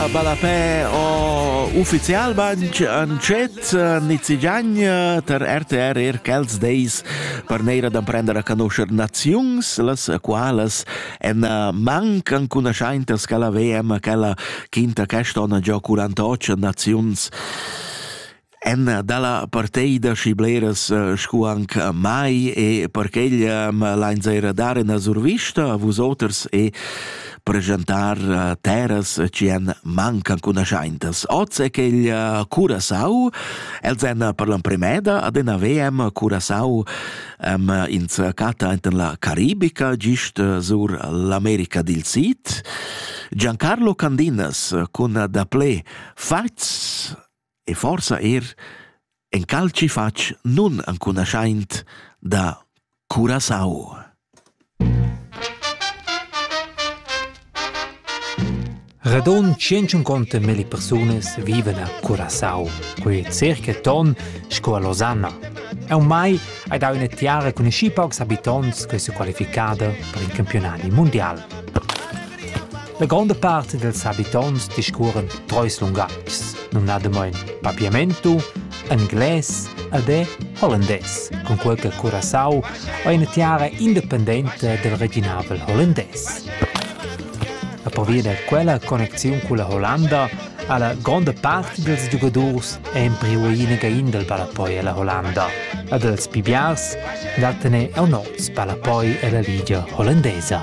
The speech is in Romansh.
a ballapè o ufficial banch an chet nizigagn ter RTR er quels deis per neira d'amprender a conoscer naziuns, las qualas en manc an cunaschaintas che la VM, quella quinta quest'onna giò 48 naziuns. Emma dalla parteida schi bleras scu anc mai e perch'ella m'lains eira dar üna survista a vusoters e preschantar terras chi han mancan cunaschaintas. Hoz è quella Curasau, els han per l'emprimeda adina VM Curasau am ins chatta enten la Caribica, gist sur l'America dil Sid. Giancarlo Candinas cun daplé fats e forsa er encalchi fatg nunancunaschaint da Curaçao. Radon 150 meli persunas vivan a Curaçao, quei è circa ton sco a Losanna. E ormai hai dau una tiara con schi paucs habitonts che si qualificada per il campionati mondial. La gronda part dals habitonts discurren treis lungatgs, numnadamain papiamento, englais ed è hollandès, cun quel che Curaçao è ina tiara independenta dal reginavel hollandès. La pervia da quella connexiun cun la Hollanda ha la gronda part dals giugadors empriu inaga in dal ballapoi alla Hollanda e dals pibiars da tener aunors ballapoi alla Liga Hollandesa.